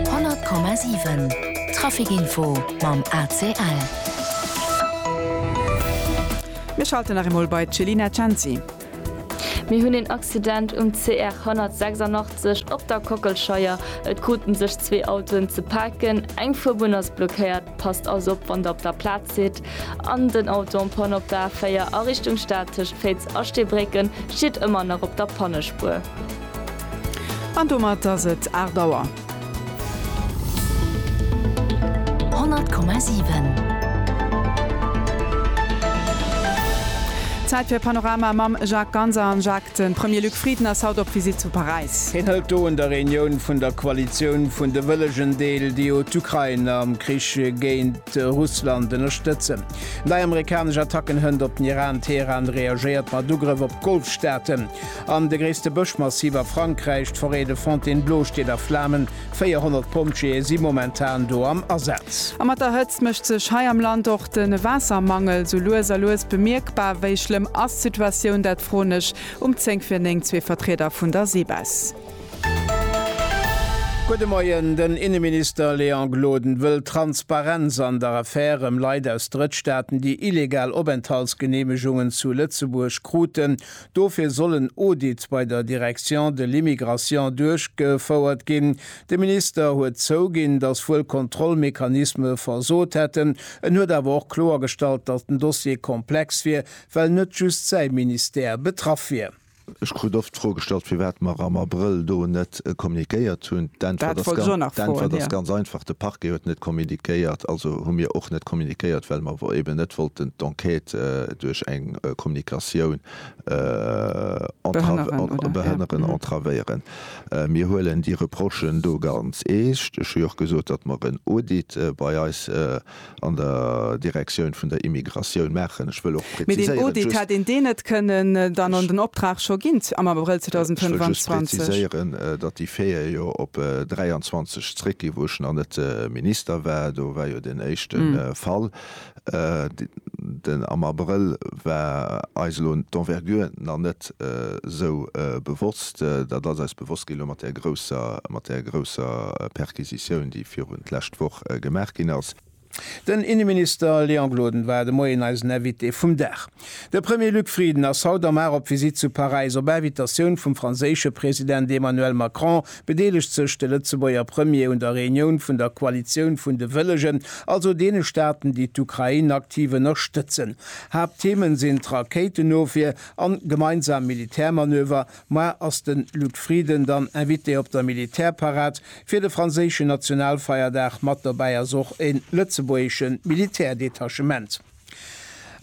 100,7 Trafic-Info mam ACL. Mir schalten nach eemol bei d'Chelina Cenci. Mir hunn een Accident um CR 186 op der Kockelscheier. Et krute sech zwee Autoen ze paken. Eng Fuerbunn ass blockéiert. Passt also op, wann der op der Plaz sidd. An den Auto en panne op der A4 a Richtung Stad tëscht Féiz a Steebrécken steet ëmmer nach op der Pannespuer. An domat ass et 8 Auer. 100,7. Zäit fir Panorama mam Jacques Ganser. An Jacques, de Premier Luc Frieden ass haut op Visitt zu Paräis. Hien hëlt do un der Reunioun vun der Koalitioun vun de wëllegen Deel, déi jo d'Ukrain am Krich géint Russland ënnerstëtzen. Nei amerikanesch Attacken hënt op den Iran, Teheran reagéiert mat Ugrëff op d'Golfstaaten. An de gréisste Bëschmassiv a Frankräich, d'Forêt de Fontainebleau, steet a Flamen. 400 Pompjeeë si momentan do am Asaz. A mat der Hëtzt mécht sech hei am Land och de Waassermangel sou lues a lues bemierkbar. Wéi schlëmm ass d'Situatioun? Dat froen ech um zéng vir néng zwee Vertrieder vun der Seebess. Gudde Moien. Den Inneminister Léon Gloden wëll Transparenz an der Affär ëm Leit aus Drëttstaaten, déi illegal Openthaltsgeneemegungen zu Lëtzebuerg kruten. Dofir sollen Audits bei der Direction de l'immigration duerchgefouert ginn. De Minister huet zouginn, datt wuel Kontrollmechanisme versot hätten. En huet awer och kloergestallt, datt den Dossier komplex wier, well net just säi Ministère betraff wier. Ech krut oft d'Fro gestallt, firwat mer am Abrëll do net net kommuniquéiert hunn. D'Äntwert ass ganz einfach, De Parquet huet net kommuniquéiert, also hu mir och net kommuniquéiert, well mer eeben net wollten d'Enquête duerch eng Kommunikatioun behënneren, entravéieren. Mir huelen déi Reprochen do ganz eescht. Ech hu jo och gesot, datt mer en Audit bei eis an der Direktioun vun der Immigratioun maachen. Ech wëll och präziséieren, just. Mee deen Audit hätt een deen net kënnen dann an den Optrag scho ginn am Abrëll 2025? Ech wëll just präziséieren, datt déi véier jo op 23 zréckginn, wou ech nach net Minister war. Do war jo deen éischte Fall den am Abrëll war, eis elo d'Envergure nach net esou bewosst. Dat ass eis bewosst ginn elo mat där grousser, mat där grousser Perquisitioun, déi virun d'lescht Woch gemaach ginn ass. Den Inneminister Léon Gloden war de Moien eisen Invité vum Dag. De Premier Luc Frieden ass haut am Mar op Visitt zu Paräis. Op Invitatioun vum franséische President Emmanuel Macron bedeelegt sech de Lëtzebuerger Premier un der Reunioun vun der Koalitioun vun de Wëllegen, also deene Staaten, déi d'Ukrain aktiv ënnerstëtzen. Haaptthemen sinn d'Rakéitenofwier, An gemeinsam Militärmanöver, moar ass den Luc Frieden dann Invité op der Militärparad fir de franséischen Nationalfeierdag, mat dobäi ass och en lëtzebuergeschen Militärdetachement.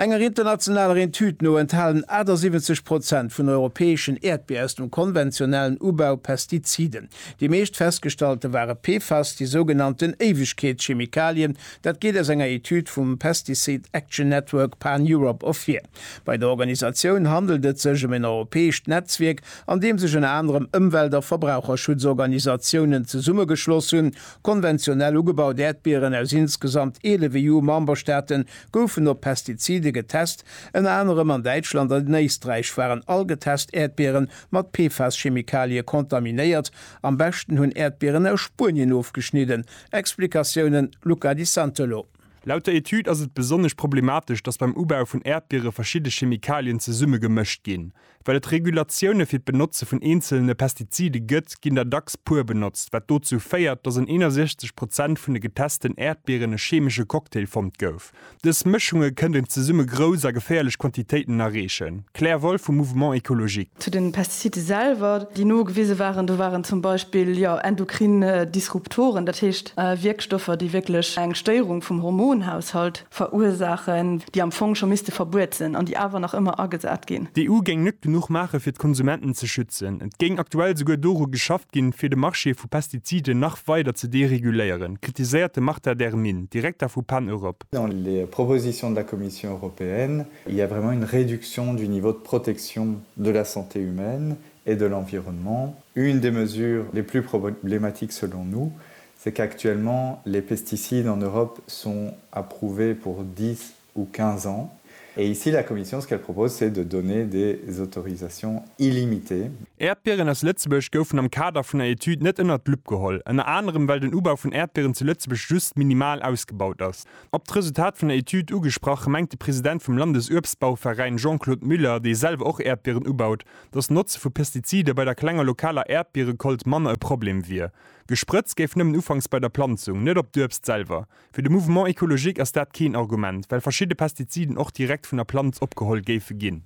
Enger internationaler Etüd no enthalen 78 Prozent vun europäeschen Äerdbier aus dem konventionellen Ubau Pestiziden. Déi meescht festgestallte ware PFAS, déi sougenannten Éiwegkeetschemikalien, dat geet aus enger Etüd vum Pesticide Action Network Pan-Europe ervir. Bei der Organisatioun handelt et sech ëm en europäescht Netzwierk, an deem sech ënner anerem Ëmwelt a Verbraucherschutzorganisatiounen zesummegeschloss hunn. Konventionell ugebaut Äerdbieren aus insgesamt 11 EU-Memberstaate goufen op Pestizide getest. Ënner anerem an Däitschland an Éisträich waren all getest Äerdbiere mat PFAS-Chemikalie kontaminéiert. Am beschten hunn Äerdbieren aus Spuenien ofgeschnidden. Explikatiounen, Luca Di Santolo. Laut der Etüd ass et besonnesch problematesch, datt beim Ubau vun Äerdbiere verschidde Chemikalien zesumme gemëscht ginn. Well et Regulatioune fir d'Benotze vun eenzelene Pestizide gëtt, ginn der dacks puer benotzt, wat dozou féiert, datt an 61 Prozent vun de getesten Äerdbieren e cheemesche Cocktail fonnt gouf. Dës Mëschunge kënnten zesumme grouss a geféierlech Quantitéiten erreechen. Claire Wolff vum Mouvement Ecologique. Zu de Pestizide selwer, déi nogewise waren, do waren zum Beispill, jo, endokrin Disruptoren, dat heescht Wierkstoffer, déi wierklech eng Stéierung vum Hormonhaushalt verursaachen, déi am Fong scho misste verbuet sinn an déi awer nach ëmmer agesat ginn. D'EU géing net genuch maachen, fir d'Konsumenten ze schützen. Et géing aktuell souguer doru geschafft ginn, fir de Marché vu Pestiziden nach weider ze dereguléieren, kritiséiert de Marta Dermin, Direkter vu Pan Europe. Dans les propositions de la Commission européenne, Il y a vraiment une réduction du niveau de protection de la santé humaine et de l'environnement. Une des mesures les plus problématiques selon nous, c'est qu'actuellement les pesticides en Europe sont approuvés pour dix ou quinze ans. Et ici, la Commission, ce qu'elle propose, c'est de donner des autorisations illimitées. Äerdbieren aus Lëtzebuerg goufen am Kader vun der Etüd net ënnert d'Lupp geholl, ënner anerem well den Ubau vun Äerdbieren zu Lëtzebuerg just minimal ausgebaut ass. Op d'Resultat vun der Etüd ugesprach, mengt de President vum Landesuebstbauveräin Jean-Claude Müller, dee selwer och Äerdbieren ubaut, datt d'Notze vu Pestizide bei der klenger lokaler Äerdbierekolt manner e Problem wier. Gesprëtzt géif nëmmen ufanks bei der Planzung, net op d'Uebst selwer. Fir de Mouvement écologique ass dat keen Argument, well verschidde Pestiziden och direkt vun der Planz opgeholl géife ginn.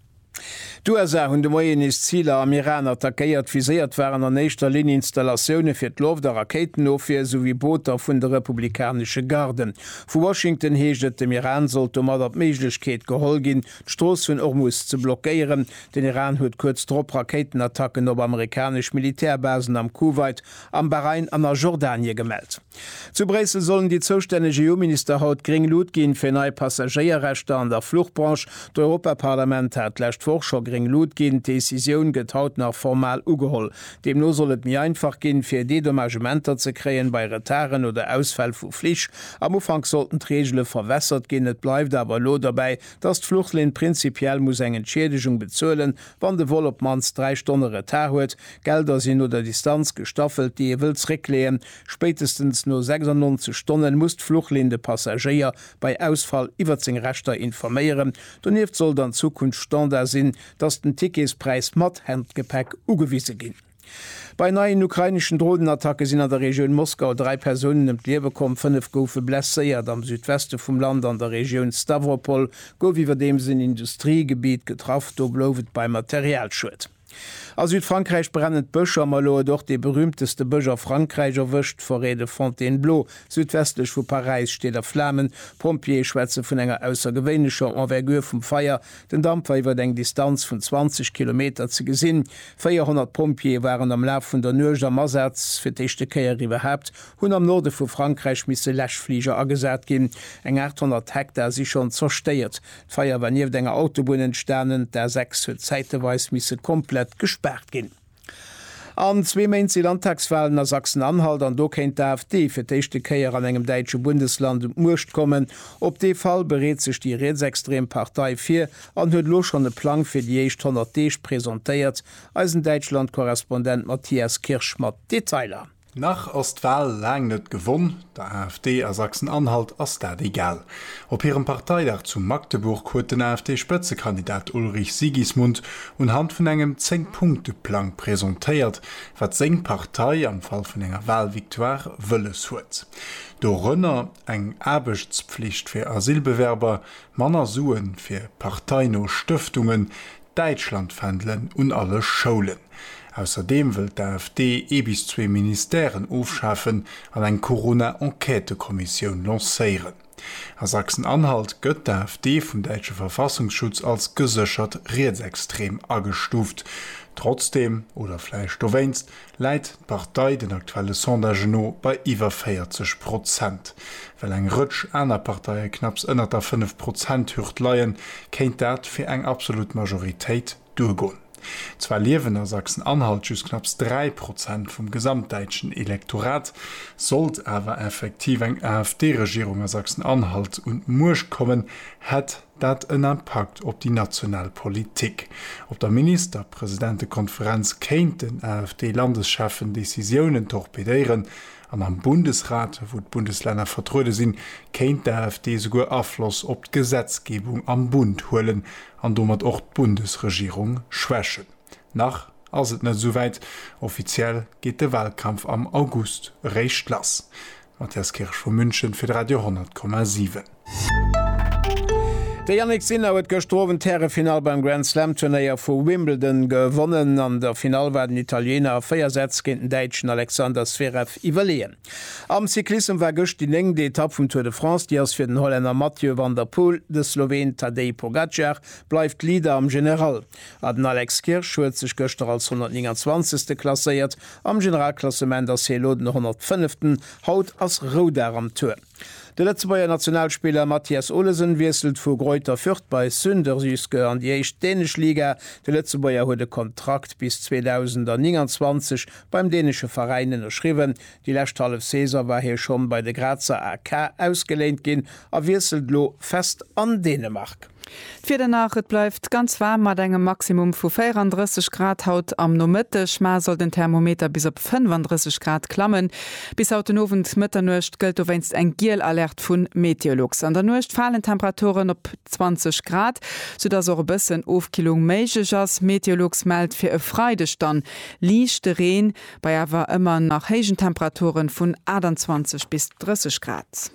D'USA hunn de Moien nees Ziler am Iran attackéiert. Viséiert waren an éischter Linn Installatioune fir d'Loft a Rakéitenofwier souwéi Booter vun de republikanesche Garden. Vu Washington heescht et, dem Iran sollt domadder d'Méiglechkeet geholl ginn, d'Strooss vun Ormus ze blockéieren. Den Iran huet kuerz drop Rakéitenattacken op amerikanesch Militärbasen am Kuwait, am Bahrain an a Jordanie gemellt. Zu Bréissel sollen déi zoustänneg EU-Minister haut gréng Lut ginn, fir nei Passagéierrechter an der Fluchbranche. D'Europaparlament hat d'lescht Woch scho gréng Lut ginn. D'Decisioun gëtt haut nach formal ugeholl. Deemno soll et méi einfach ginn, fir Dedommagementer ze kréien bei Retarden oder Ausfäll vu Flich. Am Ufank sollten d'Reegele verwässert ginn. Et bleift awer elo derbäi, dass d'Fluchlinn prinzipiell muss eng Entschiedegung bezuelen, wann de Vol op d'mannst dräi Stonne Retard huet. D'Gelder sinn no der Distanz gestaffelt, déi ee wëll zréckleeën. Spéitestens no 96 Stonnen muss d'Fluchlinn de Passagéier bei Ausfall iwwert seng Rechter informéieren. Donieft sollt an Zukunft Standard sinn, dass den Ticketspräis mat Handgepäck ugewise ginn. Bei neien ukraineschen Dronenattacke sinn an der Regioun Moskau dräi Persounen ëm d'Liewe komm, fënnef goufe blesséiert. Am Südweste vum Land an der Regioun Stawropol gouf iwwerdeems en Industriegebitt getraff, do blouf et bei Materialschued. A Südfrankräich brennen d'Bësch a mer elo huet och dee berühmteste Bësch a Frankräich erwëscht, d'Forêt de Fontainebleau, südwestlech vu Paräis, steet a Flamen. D'Pompjeeë schwätze vun enger aussergewéinlecher Envergure vum Feier, den Damp war iwwert eng Distanz vun 20 Kilometer ze gesinn. 400 Pompjeeë waren am Laf vun der Nuecht am Asaz. Fir d'éischte Kéier iwwerhaapt hunn am Norde vu Frankräich misse Läschfliger agesat ginn. Eng 800 Hektar si schonn zerstéiert. D'Feier war nieft enger Autobunn entstanen. D'A6 huet zäiteweis misse komplett gespaart ginn. An zwee Méint si Landtagswalen a Sachsen-Anhalt an do kéint d'AfD fir d'éischte Kéier an engem däitsche Bundesland un d'Muecht kommen. Op dee Fall bereet sech déi rietsextrem Partei vir an huet elo schonn e Plang fir déi éischt 100 Deeg presentéiert. Eisen Däitschland-Korrespondent Matthias Kirsch mat Detailer. Nach ass d'Wal laang net gewonn, der AfD a Sachsen-Anhalt ass dat egal. Op hirem Parteidag zu Magdeburg huet den AfD-Spëtzekandidat Ulrich Sigismund unhand vun engem Zéng-Punkte-Plang presentéiert, wat seng Partei am Fall vun enger Walvictoire wëlles huet. Dorënner eng Aarbechtspflicht fir Asylbewerber, manner Sue fir parteino Stëftungen, Däitschlandfändelen un alle Schoulen. Ausserdeem wëllt d'AfD ee bis zwee Ministèren ofschafen an eng Corona-Enquêtekommissioun lancéieren. A Sachsen-Anhalt gëtt d'AfD vum däitsche Verfassungsschutz als geséchert rietsextrem agestuuft. Trotzdeem, oder vläicht dowéinst, läit d'Partei den aktuelle Sondagen no bei iwwer 40 Prozent. Well eng Rëtsch aner Parteie knapps ënnert der fënnef Prozent-Hürd leien, kéint dat fir eng absolut Majoritéit duergoen. Zwar liewen a Sachsen-Anhalt just knapps dräi Prozent vum gesamtdäitschen Elektorat. Sollt awer effektiv eng AfD-Regierung a Sachsen-Anhalt un d'Muecht kommen, hätt. dat en Impakt op déi national Politik. Op der Ministerpresidentekonferenz kéint den AfD-Landescheffen Decisiounen torpedéieren an am Bundesrat, wou d'Bundeslänner vertruede sinn, kéint d'AfD souguer Afloss op d'Gesetzgebung am Bund huelen an domat och d'Bundesregierung schwächen. Nach ass et net esou wäit, offiziell geet de Walkampf am August eréischt lass. Mathias Kirsch vu München fir de Radio 10,7. De Jannik Sinner huet gëschter Owend d'Härefinall beim Grand Slam Turnéier vu Wimbledon gewonnen. An der Finall war den Italiener a 4 Sätz géint den Däitschen Alexander Zverev iwwerleeën. Am Cyclissem war gëscht déi néngte Etapp vum Tour de France. Déi ass fir den Hollänner Mathieu van der Poel. De Sloween Tadej Pogacar bleift Leader am General. A den Alex Kirsch huet sech gëschter als 129. klasséiert Am Generalklassement ass hie elo den 105. Haut ass Roudag am Tour. De Lëtzebuerger Nationalspiller Mathias Olesen wiesselt vu Greuther Fürth bei Sønderjyske an déi éischt dänesch Liga. De Lëtzebuerger huet e Kontrakt bis 2029 beim dänesche Veräin ënnerschriwwen. Déi lescht hallef Saison war hie schonn bei de Grazer AK ausgeléint ginn a wiesselt elo fest an Dänemark. D'Wieder nach, Et bleift ganz waarm mat engem Maximum vu 34 Grad haut am Nomëtteg, mar soll den Thermometer bis op 35 Grad klammen. Bis haut den Owend, Mëtternuecht, gëllt dowéinst eng giel Alerte vu Meteolux. An der Nuecht falen d'Temperaturen op 20 Grad, soudass och e bëssen Ofkillung méiglech ass. Meteolux mellt fir e Freideg dann liichte Reen, bei awer ëmmer nach héijen Temperaturen vun 28 bis 30 Grad.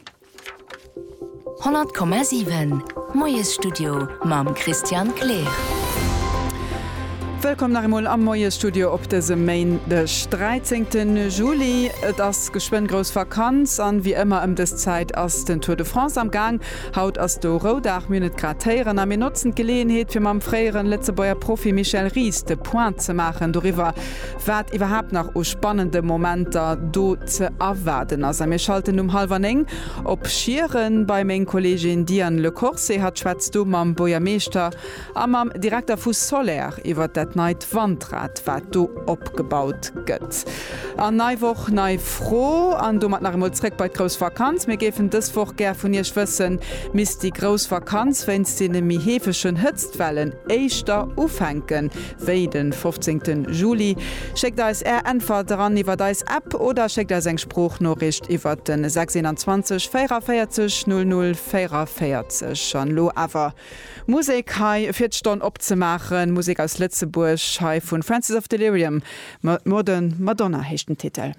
100,7 Moiesstudio mam Christian Kleer. Wëllkomm nach eemol am Moiesstudio op dësem Méindeg, 13 Juli. Et ass geschwënn grouss Vakanz an wéi ëmmer ëm dës Zäit ass den Tour de France am Gaang. Haut ass do Roudag, mir hunn et grad héieren a mir notzen d'Geleeënheet fir mam fréieren Lëtzebuerger Profi Michel Ries de Point ze maachen doriwwer, wat iwwerhaapt nach u spannende Momenter do ze erwaarden ass. A mir schalten um hallwer néng op Schieren bei meng Kolleegin Diane Le Corse. Hatt schwätzt do mam Buergermeeschter a mam Direkter vu Soler iwwert dat neit Wandrad, wat do opgebaut gëtt. An nei Woch, nei Fro an domat nach eemol zréck bei d'grouss Vakanz. Mir géifen dës Woch gär vun Iech wëssen, Misst déi grouss Vakanz wéinst deene méi heefegen Hëtztwellen éischter ufänken, Wéi den fofzéngten Juli? Schéckt eis Är Äntwert eran iwwert eis App oder schéckt eis eng Sproochnoricht iwwert den 621 44 00 44. An elo awer Musek hei fir d'Stonn opzemaachen. Musek aus Lëtzebuerg hei vun Francis of Delirium, Modern Madonna heescht den Titel.